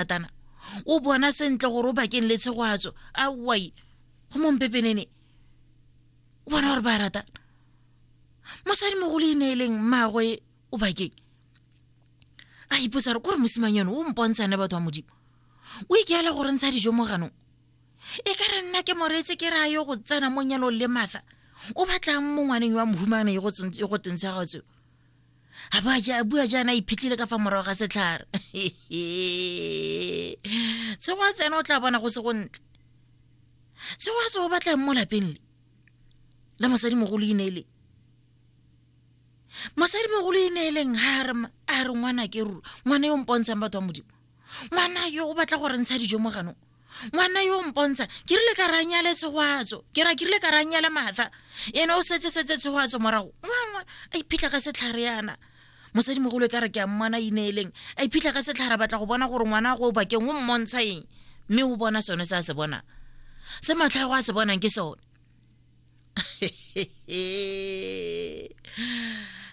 ratana o bona sentle gore o bakeng le tshegoatso a wai go mompepenene o bona gore ba ratana mosadi mogolo e ne e leng mmaagwe o bakeng a ipotsa re kore mosimang yone o mpontshane batho ba modimo o ikeela gore ntsha dijo mo ganong e ka re nna ke moretse ke ra yo go tsena mo nyalong le matha o batlang mo ngwaneng wa mohumane e go tentsha gatseo a bua ja bua jaana iphitlhile ka fa morago ga setlhare se go a tsena o tla bona go se go ntle se go a tse o batlang mo lapeng le la mosadi mogolo ineele mosadi mogolo ineeleng ga a re ngwana ke ruri ngwana yo mpontshang batho ba modimo ngwana yo o batla gore ntsha dijo mo ganong ngwana yo o mpontsha ke rile ka ranyale tshegwatso ke ra ke rile ka ranyale matha ene o setse setse tshegwatso morago ngwangwa a iphitlha ka setlhare yana mosadimogolo e ka re ke a mmana ineeleng a iphitlha ka setlhare batla go bona gore ngwana go o bakeng o mmontsha eng mme o bona sone se a se bonang se matlhago a se bonang ke sone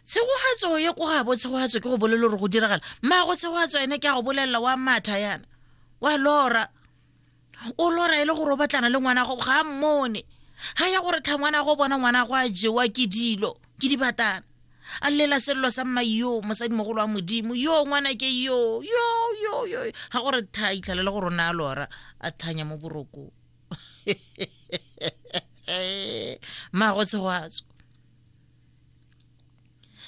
tshegogatso ye ko gabo tshegogatso ke go bolelo gore go diragala mmago tshegogatso ene ke a go bolelela wa matha yana wa lora o lora e le gore o batlana le ngwana gago ga a mmone ga ya gore tlha ngwana go bona ngwana go a jewa ke dilo ke dibatana a lela selelo sa mma yo mosadimogolo wa modimo yo ngwana ke yo yo yo yo ga gore tha itlhalele gore o ne a lora a thanya mo borokong mmago tshegoatso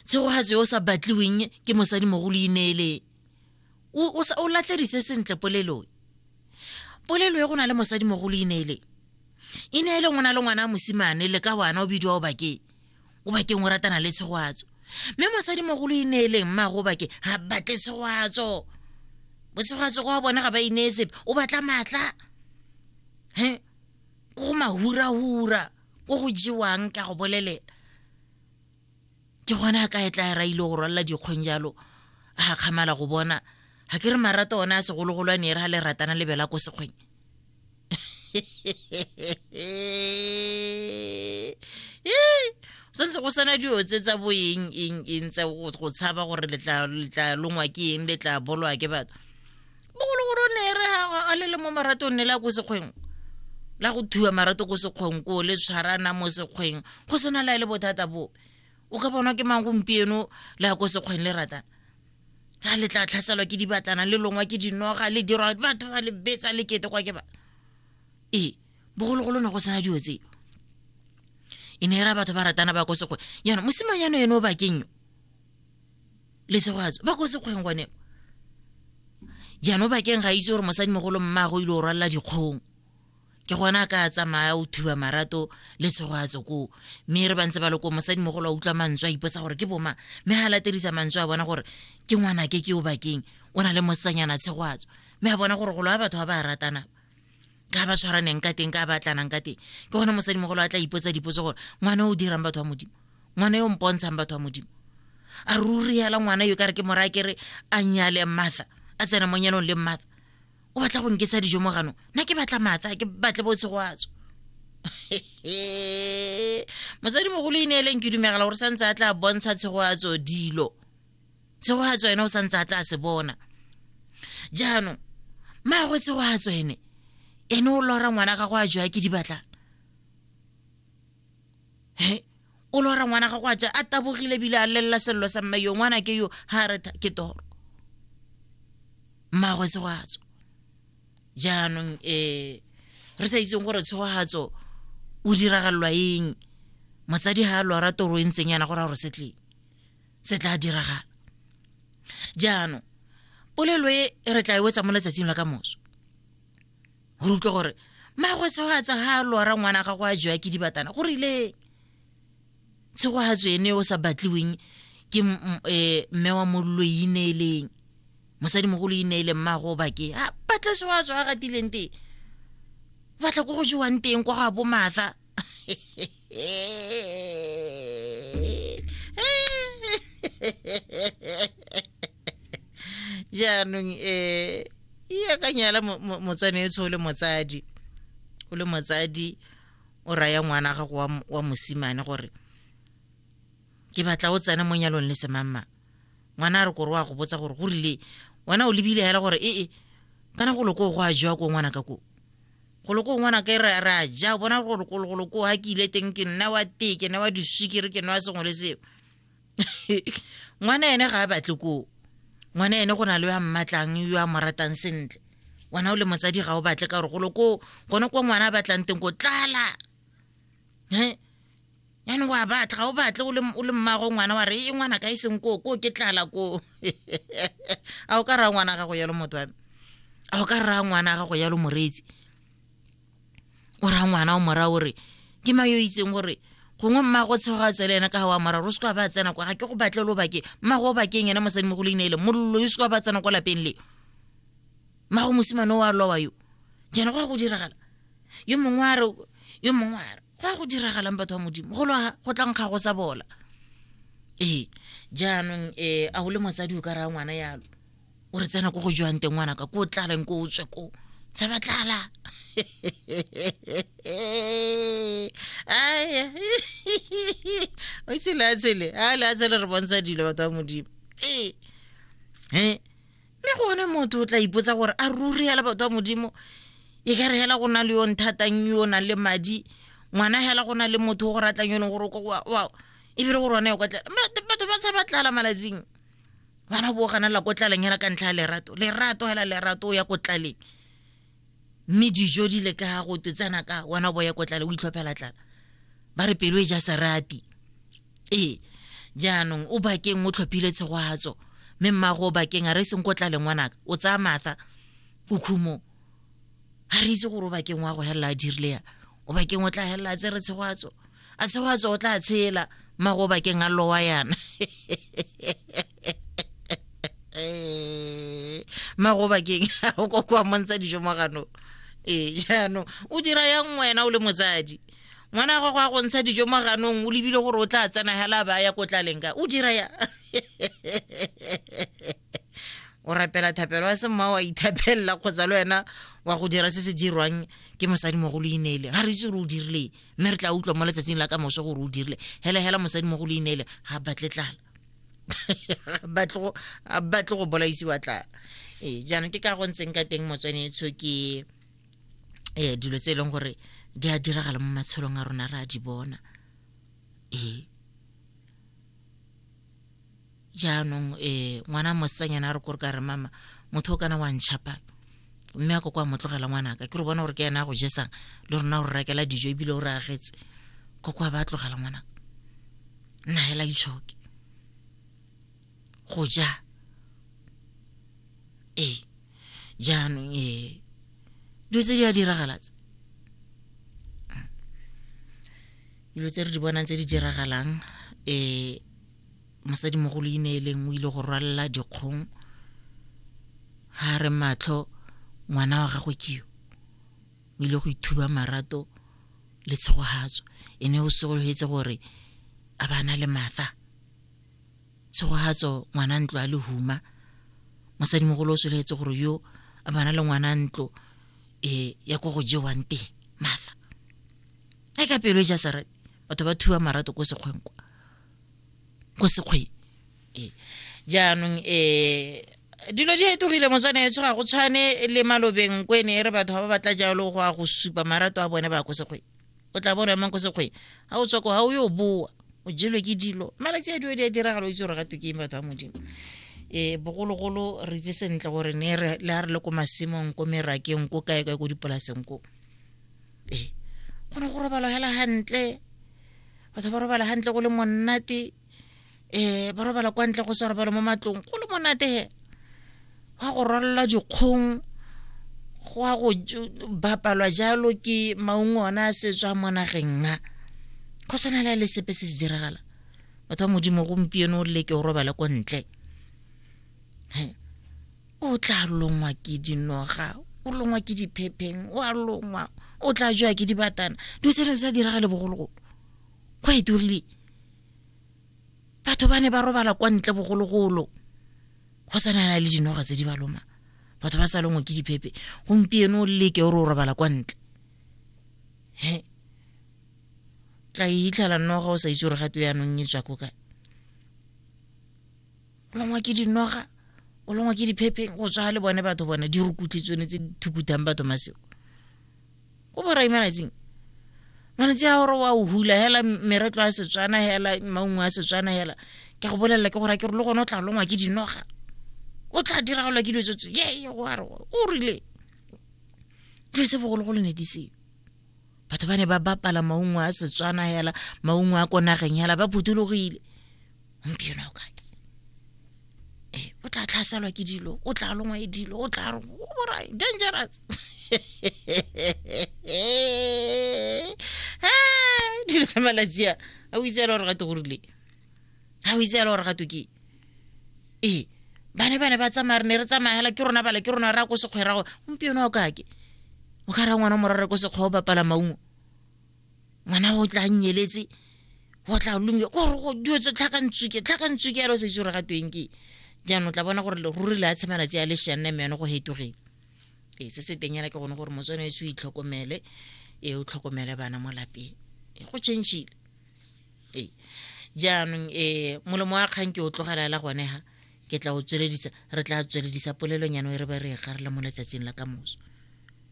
tshegogatso yo o sa batliweng ke mosadi mogolo ineeleng o latlhedise sentle polelong polelo e go na le mosadi mogolo ineeleng ineeleng o na le ngwana a mosimane le ka wana o bidiwa o bakeng o bakeng o ratana le tshegwatso mme mosadimogolo e neeleng mmago bake ga batle tshegwatso botshegwatso kwa bone ga ba inee sepe o batla maatla he ko go mahurahura ko go jewang ka go bolelela ke gone a ka e tla raile go rwalela dikgong jalo a ga kgamala go bona ga ke re marato one a segologolo a ne e re ga le ratana lebela ko sekgweng santse go sana dilo tse tsa bo eng eng eng tsa go go tshaba gore le tla le tla longwa ke eng le tla bolwa ke batho bogologolo o ne e re ha- a le le mo maratong ne la ko sekgweng la go thuba marato ko sekgweng koo le tshwarana mo sekgweng go sena la e le bothata bo o ka bonwa ke mang gompieno la ko sekgweng le ratana ga le tla tlhaselwa ke dibatlana le longwa ke dinoga le dirwa batho ba le betsa le kete kwa ke ba ee bogologolo ne go sena dilo tseo e ne e ra batho ba ratana ba ko sekgweng yana mosimanyano ene o bakeng yo le segwatso ba ko sekgweng gone jaanong bakeng ga itse gore mosadimogolo mmago ile o rwalela dikgong ke gona a ka tsamaya o thiba marato le tshogo a tsokoo mme re bantse ba loko mosadimogolo a utlwa mantswe a iposa gore ke boma mme ga latedisa mantswe a bona gore ke ngwana ke ke o bakeng o na le mosanyana tshegoatso mme a bona gore golo a batho ba ba ratana ka ba tshwaraneng ka teng ka ba tlanang ka teng ke gone mosadimogolo a tla ipotsa dipotso gore ngwana o dirang batho ba modimo ngwana yo mpontshang batho ba modimo a ruri hela ngwana yo ka re ke mora kere a nyale matha a tsena mo nyanong le matha o batla go nketsa dijo mo gano nna ke batla matha ke batle bo tshegwatso mosadi mogolo e neeleng ke dumegela gore santse a tla bontsha tshegwatso dilo tshegwatso ene o santse a tla se bona jaanong maagwe tshegwatso ene ene o lora ngwana gago a jwa ke di batlang he o lora ngwana gago a tsa a tabogile ebile a lelela selelo sa mme yo ngwana ke yo ga re tha- ke toro mmagwe tshogatso jaanong um re sa itseng gore tshogatso o diragalelwa eng motsadi ga a lora toro e ntseng yana gore a gore se tleng se tla diragala jaanong polelo e re tla e wetsa mo letsatsing la ka moso gore utlwe gore magwe tshegoatsa ga a lora ngwana ga go a jewa ke dibatana go rileng tshegoatso ene o sa batliweng ke e, mme wa mollo e ineeleng mosadimogolo e ineele mmago bakeng a batla tshegoatso a gatileng teng batla ko go jewang teng kwa go a bomatha jaanong um e akanyela motswane e tshole motsadi o le motsadi o raya ngwana gago wa mosimane gore ke batla o tsena mo nyalong le semamma ngwana a re kore wa go botsa gore go rile wena o lebile hela gore ee kana go loko go a jewa ko ngwana ka ko go loko ngwana ka re re a ja bona gore go loko ha ke ile teng ke nna wa tee ke nna wa diswikere ke nna wa sengwe le seo ngwana ene ga a batle koo ngwana ene go na le yo a mmatlang yo a mo ratang sentle wena o le motsadi ga o batle ka gore golo ko gone ko ngwana a batlang teng ko tlala e yanong wa batla ga o batle o le mmago ngwana wa re e ngwana ka e seng koo koo ke tlala koo a o ka raya ngwana gago yalo motho wa me a o ka raya ngwana gago yalo moreetsi o raya ngwana o mora o re ke ma yo itseng gore gongwe mmago tshego a tsela ena ka ga wa mora o seka ba tsena kwa ga ke go batle lo bakeng mmago o bakeng ene mosadi mo go leina ele mollo yo seka ba tsena kwa lapeng le mmago mosimane o a lowa yo jana go ya go diragala yo mongwe a re yo mongwe a re go ya go diragalang batho ba modimo go loga go tlang ga go sa bola ee jaanong um a o le motsadi o ka raya ngwana yalo o re tsena ko go jwang teng ngwana ka ko o tlaleng ko o tswe ko tsa ba tlala aya o ise le a tshele a le a tshele re bontsha dilo batho ba modimo ee Eh, mme gone motho o tla ipotsa gore a ruri hela batho ba modimo e ka re hela go na le yo nthatang yo o nang le madi ngwana hela go na le motho o go ratlang yo e leng gore o ko- wa- wa- ebile gore one o ka tla Ma- batho ba tshaba tlala malatsing bana bo gana la ko tlaleng hela ka ntlha ya lerato lerato hela lerato o ya ko tlaleng mme dijo di le ka go twe tsena ka wena bo ya ko tlale o itlhophela tlala ba re pelo e ja serati ee jaanong o bakeng o tlhophile tshegwatso mme mmago o bakeng a re e seng ko tlaleng ngwanaka o tsaya matha ko khumong ga re itse gore o bakeng wa go helela a dirile ya o bakeng o tla helela a tsere tshegwatso a tshegwatso o tla tshela mmago o bakeng a lowa yana mmago o bakeng o kokoa montsha dijo mo ganong ee jaanong o dira yang wena o le motsadi ngwana gago a go ntsha dijo mo ganong o lebile gore o tla tsena hela ba ya ko tlaleng ka o dira ya o rapela thapelo a se mma wa ithapelela kgotsa le wena wa go dira se se dirwang ke mosadi mogolo ineele ga re itse gore o dirileng mme re tla utlwa mo letsatsing la ka moso gore o dirile hela hela mosadi mogolo ineele ga batle tlala batle go bolaisiwa tlala ee jaanong ke ka go ntseng ka teng motswanetsho ke um dilo tse e leng gore di a diragala mo matshelong a rona re a di bona ee jaanong um ngwana mosanyana a re kore ka re mama motho o kana wa ntšhapa mme a ko kwa motlogela ngwanaka ke re bona gore ke ena a go jesang le rona o re rakela dijo ebile o re agetse ko kwa ba tlogela ngwanaka nna hela itshoke go ja ee jaanong ee dilo tse di a diragala tse dilo tse re di bonang tse di diragalang um mosadimogolo ine e leng o ile go rwalela dikgong ga re matlho ngwana wa gagwe keo o ile go ithuba marato le tshegogatso e ne o segologetse gore a bana le matha tshegogatso ngwana ntlo a le huma mosadimogolo o sologetse gore yo a bana le ngwana ntlo e ya ko go jewang teng matha a ka pelo e ja sarate batho ba thuba marato ko sekgwenkwa ko sekgweng ee. jaanong um dilo di fetogile motswana etsho ga go tshwane le malobeng ko e ne e re batho ga ba batla jalo go ya go supa marato a bone ba ko sekgweng o tla bona emang ko sekgweng ga o tswako ga o yo boa o jelwe ke dilo malatsi a dilo di a diragalo o itse gore gatwe ke eng batho ba modimo um bogologolo re itse sentle gore ne le a re le ko masimong ko merakeng ko kae kae ko dipolaseng koo ee go ne go robala hela hantle batho ba robala hantle go le monate um ba robala kwa ntle go sa robala mo matlong go le monate he gwa go rwalelwa dikgong go a go bapalwa jalo ke maungo ona a setswa mo nageng a go tshwana le le sepe se se diragala batho ba modimo gompieno o leke o robala ko ntle o tla longwa ke dinoga o longwa ke diphepheng o a longwa o tla jwa ke dibatana dilo tse ne sa direga le bogologolo go eturile batho ba ne ba robala kwa ntle bogologolo go sa nana le dinoga tse di ba loma batho ba sa longwe ke diphephe gompieno o leke o re o robala kwa ntle he tla e itlhela noga o sa itse gore gato yanong e tswa ko kae o longwa ke dinoga o longwa ke diphepheng go tswa le bone batho bone di rukutlhe tsone tse di thukutang batho maseo go borai malatsing malatsi a gore wa o hula hela meretlo a setswana hela maungo a setswana hela ke go bolelela ke gore ke re le gone o tla longwa ke dinoga o tla diragolwa ke dilo tsetse ye go a re o rile dilo tse bogologolo ne di seo batho ba ne ba bapala maungo a setswana hela maungo a ko nageng hela ba phuthologile gompieno ao kae ee o tla tlhaselwa ke dilo o tla longwa e dilo o tla borai dangerous dilo tsa malatsi a a o itseela gore gato gorile a o itseela gore gato ke ee ba ne ba ne ba tsamaya re ne re tsamaya hela ke rona bala ke rona ra ko sekgwerago gompieno o kake o ka ra ngwana morare ko sekgwa o bapala maungo ngwana o tla nyeletse go tla lomile kore go dio tse tlhakantsuke tlhakantsuke yalo se itse gore ga tweng ke jaanong tla bona gore ruri le a tshema natse ya leshane mme yone go hetogeng ee se se teng yana ke gone gore motswane e se o itlhokomele ee o tlhokomele bana mo lapeng ee go changile ee jaanong ee molomo wa kgang ke o tlogelela gone ga ke tla o tsweledisa re tla tsweledisa polelong yana e re ba re e garile mo letsatsing la ka moso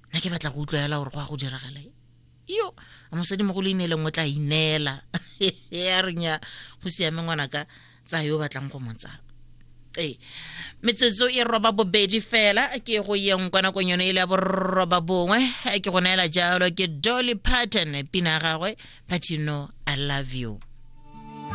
nna ke batla go utlwa fela gore go ya go diragalae yo a mosadimogolo ineleng o tla ineela ya reng ya go siame ngwana ka tsa yo batlang go mo tsaya ee metsotso e roba bobedi fela ke go yeng kwa nakong yone e le ya borroba bongwe ke go neela jalo ke dolly parton pina ya gagwe but you know i love you